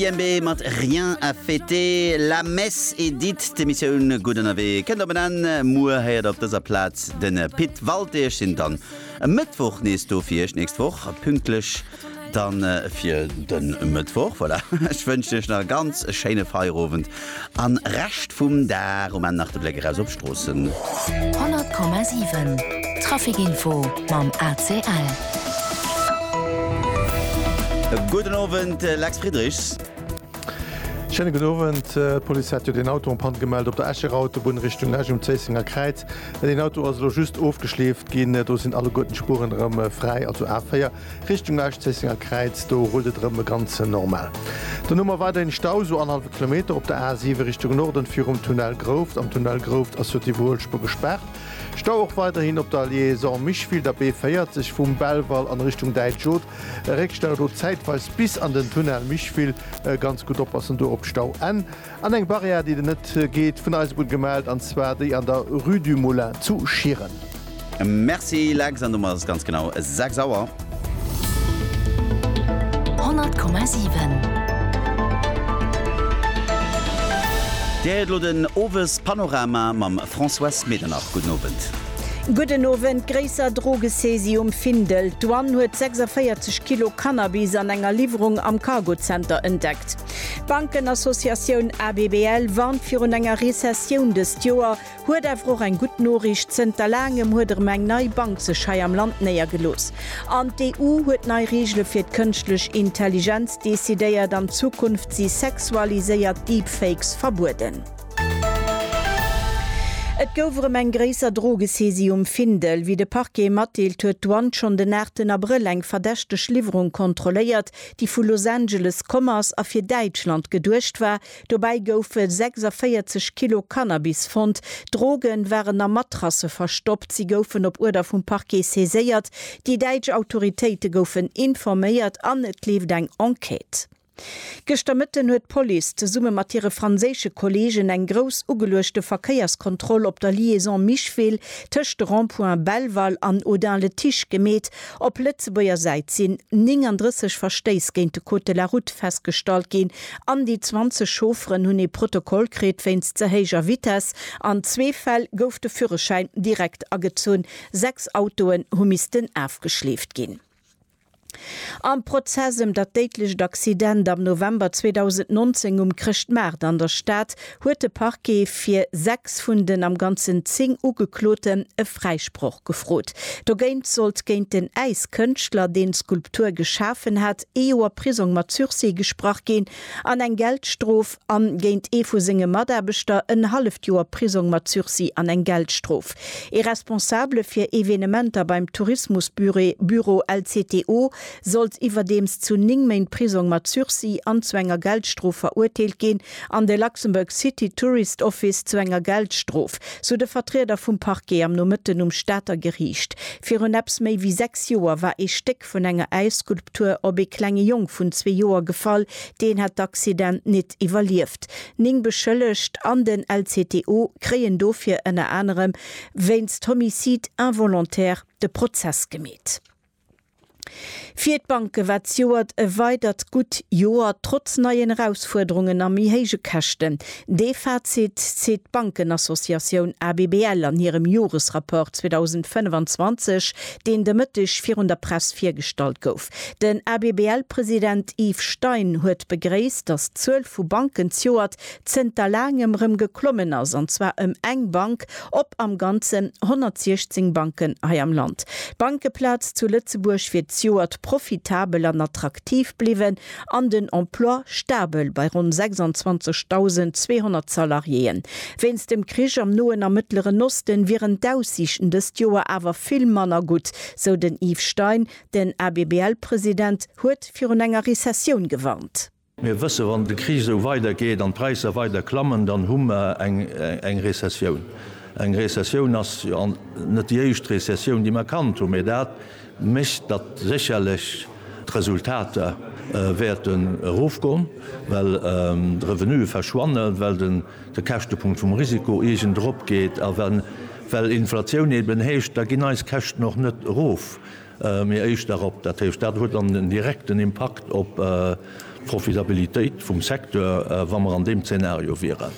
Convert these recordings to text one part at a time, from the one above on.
JMB mat Rien à fêter, La Messe est dite, d'Emissioun Gutt ënnerwee kënnt op en Enn. Muer héiert op dëser Plaz de Pit Walté. Ech sinn dann e Mëttwoch nees do fir Iech, d'nächst Woch pünktlech dann fir de Mëttwoch. Voilà, ech wënschen Iech nach e ganz schéine Feierowend An Rescht vum Dag um Enn nach de Bléck eraus op d'Stroossen. 100,7 Traficinfo mam ACL. E gudden Owend, Lex Friedrichs. Schéine gudden Owend. D'Police hat jo deen Auto en Panne gemellt op der Escher Autobunn Richtung Esch um Zéissenger Kräiz. Deen Auto ass elo just ofgeschleeft ginn. Do sinn alleguerten d'Spuren erëm fräi, also A4, Richtung Lauschzeessenger Kräiz, do rullt et erëm e ganzen normal. Dann hu mer weiderhin Stau, sou annerhallwe Kilometer op der A7 Richtung Norden virum Tunnel Grouft. Am Tunnel Grouft ass jo d'Iwwerhuelspur gespaart. Stau och weiderhin op der Liaison Micheville, der B40 vum Belval an Richtung Däitschod. E Réckstau do zäitweis bis an den Tunnel Micheville. Ganz gutt oppassen do op d'Stauenn. An eng Barrière, déi et net geet, vun Eisebunn gemellt, an zwar déi an der Rue du Moulin zu Schieren. Merci Lex, an domat ass et ganz genau 6 Auer. 100,7. Dir héiert elo den Owespanorama mam Françoise Medernach. Gudden Owend. Gudden Owend. Gréisser Drogesaisie um Findel, D'Douane huet 46 Kilo Cannabis an enger Liwwerung am Cargozenter entdeckt. D'Bankenassociatioun ABBL warnt virun enger Rezessioun dëst Joer, huet awer och eng gutt Noriicht, Zënter laangem huet erëm eng nei Bank sech hei am Land néiergelooss. An d'EU huet nei Reegele fir d'Kënschtlech Intelligenz decidéiert. An Zukunft si sexualiséiert Deepfakes verbueden. Et gouf erëm eng gréisser Drogesaisie um Findel. Wéi de Parquet matdeelt, huet d'Douane schonn den aachten Abrëll eng verdächteg Liwwerung kontrolléiert, déi vu Los Angeles komm ass a fir Däitschland geduecht war. Dobäi goufe 46 Kilo Cannabis fonnt. D'Droge waren a Matrasse verstoppt. Si goufen op Uerder vum Parquet saiséiert. Déi däitsch Autoritéite goufen informéiert an et leeft eng Enquête. Gëschter Mëtten huet d'Police zesumme mat hire franséische Kolleegen eng grouss ugeluechte Verkéierskontroll op der Liaison Micheville tëscht de Rond-point Belval an Audun-le-Tiche gemeet. Op Lëtzebuerger Säit sinn 39 Verstéiss géint de Code de la Route festgestallt ginn an déi 20 Chaufferen hunn ee Protokoll kritt wéinst ze héijer Vitess. An zwee Fäll gouf de Führerschäin direkt agezunn. Sechs Autoen hu missten afgeschleeft ginn. Am Prozess ëm dat déidlecht Accident am November 2019 um Chrëschtmaart an der Stad huet de Parquet fir sechs vun den am Ganzen zéng Ugekloten e Fräisproch gefrot. Dogéint sollt géint den Äiskënschtler, deen d'Skulptur geschafen hat, ee Joer Prisong mat Sursis gesprach ginn an eng Geldstrof an géint ee vu senge Mataarbechter en halleft Joer Prisong mat Sursis an eng Geldstrof. Ee Responsabele fir Evenementer beim Tourismusbüro LCTO sollt iwwerdeems zu ning Méint Prisong mat Sursis an zu enger Geldstrof verurteelt ginn, an de Luxembourg City Tourist Office zu enger Geldstrof, sou de Vertrieder vum Parquet am Nomëtten um Stater Geriicht. Virun eppes méi wéi sechs Joer war ee Stéck vun enger Äisskulptur op ee klenge Jong vun zwee Joer gefall, deen hat d'Accident nit iwwerlieft. Ning Beschëllegt an den LCTO kréien dofir ënner anerem wéinst Homicide involontaire de Prozess gemeet. Fir d'Banke war d'Joert e weidert gutt Joer, trotz neien Erausfuerderungen a méi héije Käschten. Dee Fazit zitt d'Bankenassociatioun ABBL an hirem Joresrapport 2025, deen de Mëtteg virun der Press virgestallt gouf. Den ABBL-President Yves Stein huet begréisst, datt d'Zuel vu Banken d'Joert zënter laangem rëm geklommen ass, an zwar ëm eng Bank op am Ganzen 116 Banken hei am Land. D'Bankeplaz zu Lëtzebuerg wier zejoert profitabel an attraktiv bliwwen an den Emploi stabel bei ronn 26.200 Salariéeën. Wéinst dem Krich am Noen a Mëttleren Osten wieren d'Aussiichten dëst Joer awer vill manner gutt, sou den Yves Stein. Den ABBL-President huet virun enger Rezessioun gewarnt. Mir wësse wann de Krich esou weidergeet an d'Präisser weider klammen, dann hu mer eng Rezessioun. Eng Rezessioun ass jo net déi éischt Rezessioun déi mer kannt hunn, mee dat mécht datt sécherlech d'Resultater wäerten erofgoen, well d'Revenuë verschwannen, well de Käschtepunkt vum Risiko iergend eropgeet a well Inflatioun eben heescht, da ginn eis Käschten och net erof. Mee éischt nach op dat Héicht. Dat huet dann en direkten Impakt op d'Profitabilitéit vum Secteur, wa mer an deem Zeenario wieren.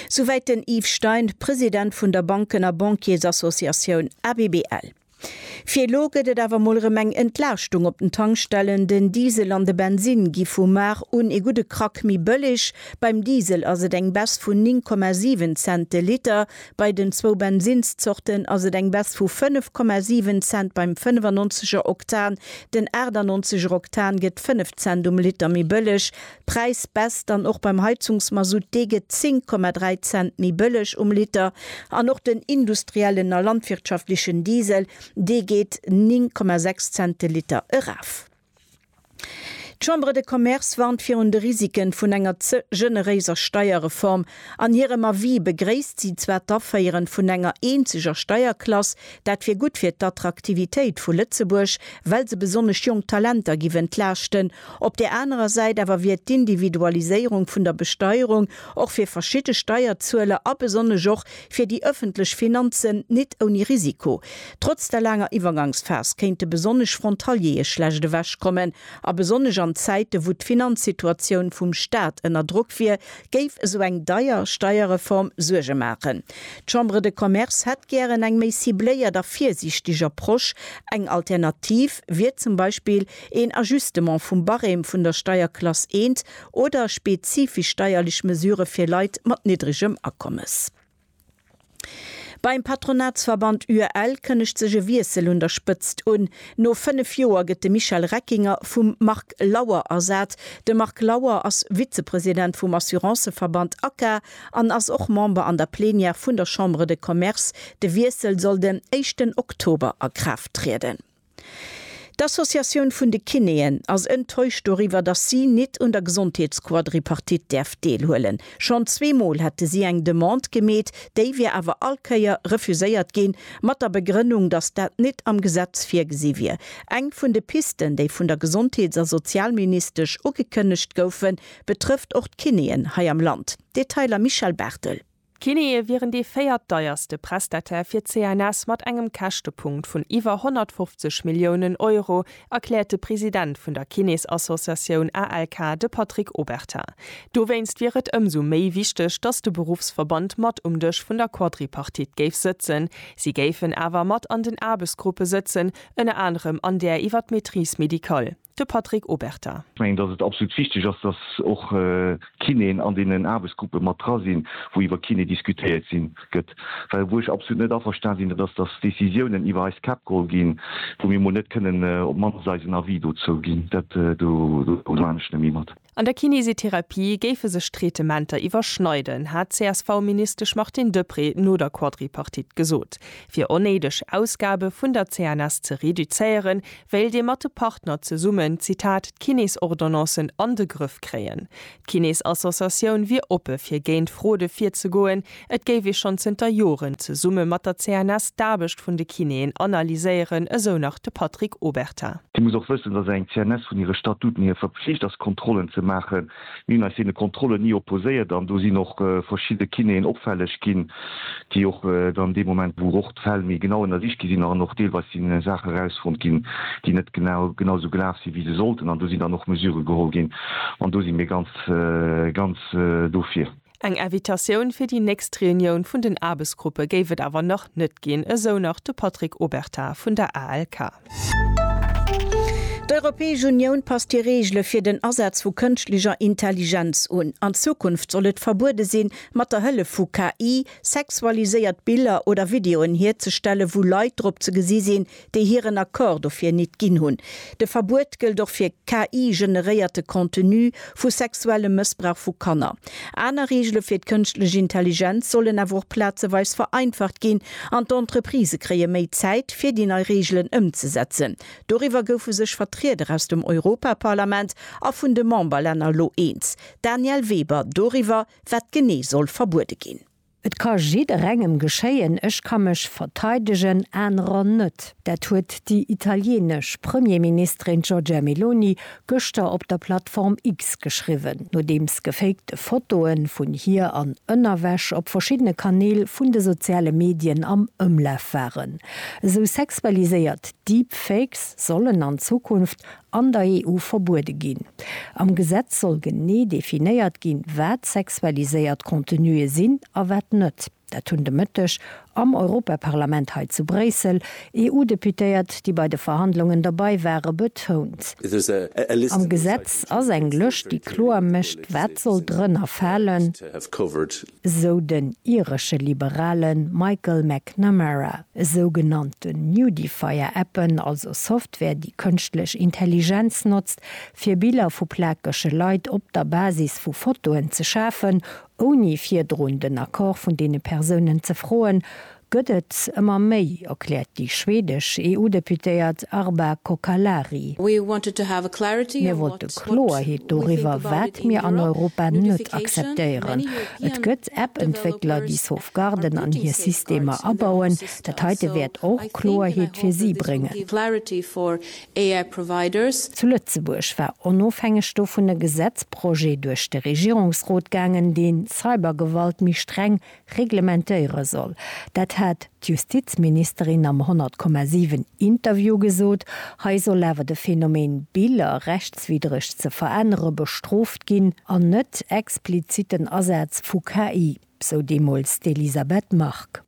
Souwäit den Yves Stein, President vun der Banken a Bankiersassociatioun ABBL. Fir elo gëtt et awer mol erëm eng Entlaaschtung op den Tankstellen. Den Diesel an de Bensinn gi vu mar un ee gudde Krack méi bëlleg. Beim Diesel ass et eng Baisse vun 9,7 Cent de Liter, Bei den zwou Bensinszorten ass et eng Baisse vu 5,7 Cent beim 95 er Oktan, den 98 er Oktan gëtt 5 Cent um Liter méi bëlleg. D'Präisbaisse dann och beim Heizungsmasutt, dee gëtt 10,3 Cent méi bëlleg um Liter an och den industriellen a landwirtschaftlechen Diesel, dee geet 9,6 Cent de Liter eraf. D'Chambre de Commerce warnt virun de Risiken vun enger ze generéiser Steierreform. An hirem Avis begréisst si zwar d'Aféieren vun enger eenzeger Steierklass, dat wier gutt fir d'Attraktivitéit vu Lëtzebuerg, well se besonnesch jonk Talenter giff entlaaschten. Op där anerer Säit awer wier d'Individualiséierung vun der Besteierung och fir verschidde Steierzueler a besonnesch och fir déi ëffentlech Finanzen nit ouni Risiko. Trotz der laanger Iwwergangsphas kéinte besonnesch Frontaliere schlecht ewech kommen, a besonnesch an Zäite wou d'Finanzsituatioun vum Staat ënner Drock wier, géif esou eng deier Steierreform Suerge maachen. D'Chambre de Commerce hätt gären eng méi cibléiert a virsiichteg Approche. Eng Alternativ wier zum Beispill een Ajustement vum Barème vun der Steierklass 1 oder spezifisch steierlech Mesurë fir Leit mat niddregem Akommes. Beim Patronatsverband UEL kënnegt sech e Wiessel un der Spëtzt un. No 5 Joer gëtt de Michel Reckinger vum Marc Lauer ersat. De Marc Lauer ass Vizepresident vum Assurancëverband ACA an ass och Member an der Plenière vun der Chambre de Commerce. De Wiessel soll den éischten Oktober a Kraaft trieden. D'Associatioun vun de Kinéen ass enttäuscht doriwwer, dass si nit un der Gesondheetsquadripartite däerf deelhuelen. Schonn zwee Mol hätte si eng Demande gemeet, déi wier awer all Kéier refuséiert ginn, mat der Begrënnung, dass dat nit am Gesetz virgesi wier. Eng vun de Pisten, déi vun der Gesondheets a Sozialministesch ugekënnegt goufen, betrëfft och d'Kinéen hei am Land. Detailer Michèle Barthel. D'Kinneë wieren dee véiert deierste Prestataire fir d'CNS mat engem Käschtepunkt vun iwwer 150 Milliounen Euro, erkläert de President vun der Kinésassociatioun ALK, de Patrick Obertin. Dowéinst wier et ëmsou méi wichteg, datt de Beruffsverband mat um Dësch vun der Quadripartite géif sëtzen. Si géifen awer mat an den Aarbechtsgruppe sëtzen, ënner anerem an där iwwer d'Maîtrise médicale. de Patrick Obertin. Ech mengen, datt et absolut wichteg ass, datt och d'Kinéen an deenen Aarbechtsgruppe mat dra sinn, wou iwwer Kiné diskutéiert sinn, gëtt. Well wou ech absolut net averstan sinn, dat ass, datt Décisiounen iwwer eist Käpp geholl ginn, wou mir emol net kënnen op d'mannst eisen Avis dozou ginn. Dat do maan ech net méi mat. An der Kinesitherapie géife sech d'Traitementer iwwerschneiden, hat d'CSV-Ministesch Martine Deprez no der Quadripartite gesot. Fir onnéideg Ausgabe vun der CNS ze reduzéieren, wéilt ee mat de Partner zesummen, Zitat, d'Kinesordonnancen an de Grëff kréien. D'Kinesassociatioun wier oppe fir géint Fraude virzegoen, Et géif ee schonn zënter Joren zesumme mat der CNS d'Aarbecht vun de Kinéen analyséieren, esou nach de Patrick Obertin. Dir musst och wëssen, datt eng CNS vun hire Statuten hier verpflicht ass, Kontrollen ze maachen. Mir hunn eis deene Kontrollen ni opposéiert an do sinn och verschidde Kinéen opfälleg ginn, déi och dann dee Moment, wou och d'Fäll méi genau ënnersicht gi sinn an och deelweis si Saache rausfonnt ginn, déi net genau genausou gelaf sinn, wéi se sollten, an do sinn dann och Mesurë geholl ginn an do si mir ganz, ganz dofir. Eng Invitatioun fir déi nächst Reunioun vun den Aarbechtsgruppe géif et awer nach net ginn, esou nach de Patrick Obertin vun der ALK. D'Europäesch Unioun passt hir Reegele fir den Asaz vu kënschtlecher Intelligenz un. An Zukunft soll et verbuede sinn, mat der Hëllef vu KI sexualiséiert Biller oder Videoen hierzestellen, wou Leit drop ze gesi sinn, déi hiren Accord dofir nit ginn hunn. De Verbuet gëllt och fir KI-generéierte Contenu vu sexuellem Mëssbrauch vu Kanner. Aner Reegele fir d'kënschtlech Intelligenz sollen awer och plazeweis vereinfacht ginn an d'Entreprisë kréie méi Zäit, fir déi nei Reegelen ëmzesetzen. Doriwwer goufe sech Vertrieder aus dem Europaparlament a vun de Memberlänner elo eens. D'Danièle Weber doriwwer, wat genee soll verbuede ginn. Et ka jidderengem geschéien, ech ka mech verteidegen, anerer net. Dat huet déi italienesch Premierministerin Giorgia Meloni gëschter op der Plattform X geschriwwen, nodeems gefakte Fotoe vun hir an Ënnerwäsch op verschiddene Kanäl vun de soziale Medien am Ëmlaf waren. Esou sexualiséiert Deepfakes sollen an Zukunft an der EU verbuede ginn. Am Gesetz soll genee definéiert ginn, wat sexualiséiert Contenue sinn a wat net. Dat hunn de Mëtteg am Europaparlament hei zu Bréissel EU-Deputéiert, déi bei de Verhandlungen derbei ware, betount. Am Gesetz ass eng Lëscht, déi kloer mécht, wat soll drënner falen. esou den iresche Liberale Michael McNamara. Esou genannte Nudifier-Appen, also Software, déi kënschtlech Intelligenz notzt, fir Biller vu plakege Leit op der Basis vu Fotoen ze schafen, ouni virdrun den Accord vun deene Persounen ze froen, Gëtt et ëmmer méi, erkläert déi schwedesch EU-Deputéiert Arba Cocalari. Mir wollte Kloerheet doriwwer, wat mir an Europa net akzeptéieren. Et gëtt App-Entwéckler, déi Sauvegarden an hir Systemer abauen. Dat heite wäert och Kloerheet fir si bréngen. Zu Lëtzebuerg war onofhängeg dovun e Gesetzprojet duerch de Regierungsrot gaangen, deen Cybergewalt méi streng reglementéiere soll. Dat hat d'Justizministerin am 100,7 Interview gesot. Hei soll awer de Phänomen Biller rechtswiddreg ze verännere bestrooft ginn an net expliziten Asaz vu KI, sou deemools d'Elisabeth Margue.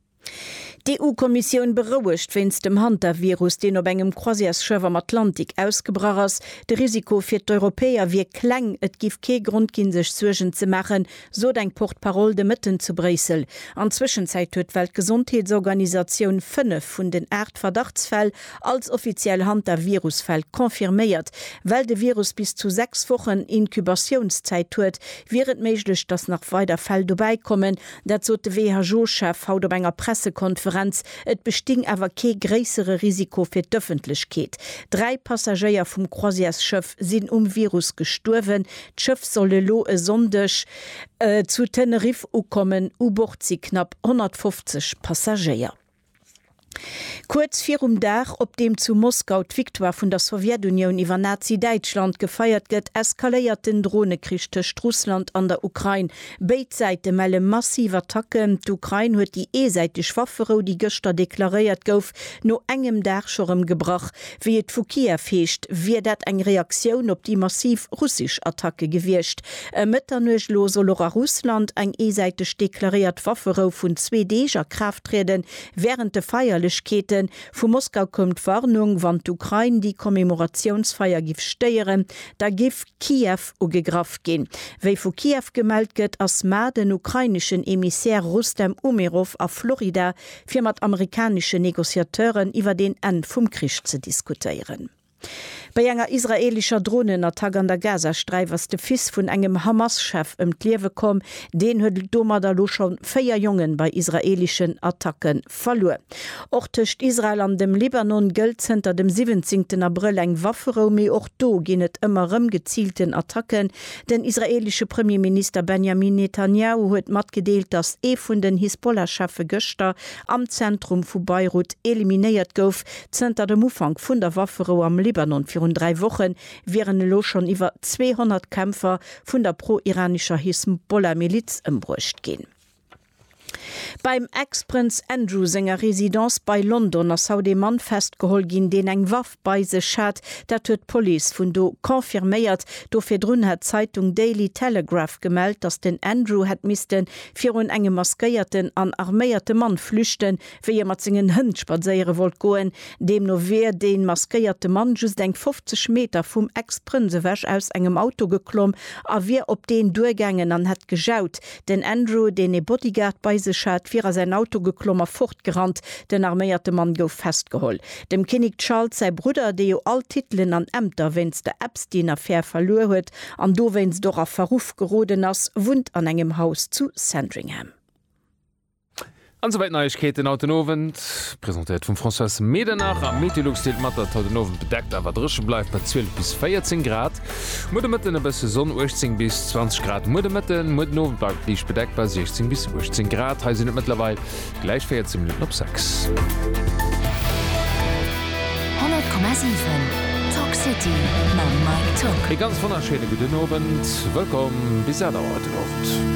D'EU-Kommissioun berouegt wéinst dem Hantavirus, deen op engem Croisièresschëff am Atlantik ausgebrach ass. De Risiko fir d'Europäer wier kleng, et giff kee Grond ginn, sech Suergen ze maachen, sot eng Porte-parole de Mëtten zu Bréissel. An Zwëschenzäit huet d'Weltgesondheetsorganisatioun fënnef vun den aacht Verdachtsfäll als offiziell Hantavirus-Fäll confirméiert. Well de Virus bis zu sechs Wochen Incubatiounszäit huet, wier et méiglech, datt nach weider Fäll dobäi kommen. Dat sot de WHO-Chef haut op enger Pressekonferenz. Et besting awer kee gréissere Risiko fir d'Ëffentlechkeet. Dräi Passagéier vum Croisièresschëff sinn um Virus gestuerwen. D'Schëff soll elo e Sonndeg zu Teneriff ukommen. U Bord si knapp 150 Passagéier. Kuerz virum Dag, op deem zu Moskau d'Victoire vun der Sowjetunioun iwwer Nazi-Däitschland gefeiert gëtt, eskaléiert den Dronekrich tëscht Russland an der Ukrain. Béid Säite melle massiv Attacken. D'Ukrain huet déi eesäiteg Wafferou, déi gëschter deklaréiert gouf, no engem Dag scho rëm gebrach. Wéi et vu Kiew heescht, wier dat eng Reaktioun op déi massiv russesch Attacke gewiescht. Ëm Mëtternuecht elo soll och a Russland eng eesäiteg deklaréiert Wafferou vun zwee Deeg a Kraaft trieden. Wärend de Feierlechkeeten vu Moskau koum d'Warnung, wann d'Ukrain déi Commemoratiounsfeier giff stéieren, da giff Kiew ugegraff ginn. Wéi vu Kiew gemellt gëtt, ass mar den ukraineschen Emissär Rustem Umerov a Florida fir mat amerikaneschen Negociateuren iwwert een Enn vum Krich ze diskutéieren. Bei enger israelischer Dronenattack an der Gazasträif ass de Fils vun engem Hamas-Chef ëm d'Liewe komm. Deen huet domadder elo scho véier Jongen bei israelischen Attacke verluer. Och tëscht Israel an dem Libanon gëllt zënter dem 17 Abrëll eng Wafferou, mee och do ginn et ëmmer rëm geziilten Attacken Den israeelesche Premierminister Benjamin Netanjahu huet matgedeelt, datt ee vun den Hisbollah-Cheffe gëschter am Zentrum vu Beirut eliminéiert gouf. Zënter dem Ufank vun der Wafferou am Libanon virun dräi Woche wieren elo schonn iwwer 200 Kämpfer vun der pro-iranescher Hisbollah-Miliz ëmbruecht ginn. Beim Ex-Prënz Andrew senger Residence bei London ass haut ee Mann festgeholl ginn, deen eng Waff bei sech hat. Dat huet d'Police vun do confirméiert. Do virdrun hat d'Zeitung Daily Telegraph gemellt, datt den Andrew hätt misste virun engem maskéierten an arméierte Mann flüchten, wéi e mat sengen Hënn spadséiere wollt goen. Deemno wier dee maskéierte Mann just eng 50 Meter vum Ex-Prënz ewech aus engem Auto geklomm a wier op deen duergaangen an hätt gejaut. Den Andrew, deen ee Bodyguard bei sech hat, wier a säin Auto geklomm a fortgerannt. Den arméierte Mann gouf festgeholl. Dem Kinnek Charles säi Brudder, dee jo all Titelen an Ämter wéinst der Epstein-Affär verluer huet an dowéinst och a Verruff geroden ass, wunnt an engem Haus zu Sandringham. An souwäit d'Neiegkeeten haut den Owend, presentéiert vum Françoise Medernach. Am Meteolux deelt mat, datt et haut den Owend bedeckt awer dréche bleift bei 12 bis 14 Grad. Muer de Mëtten e bësse Sonn, 18 bis 20 Grad muer de Mëtten. Muer den Owend bleift et liicht bedeckt bei 16 bis 18 Grad. Hei sinn et mëttlerweil gläich 14 Minutten op 6. 100,7 Talk City mam Mike Tock. Ee ganz wonnerschéine gudden Owend. Wëllkomm bis 8 Auer haut den Owend.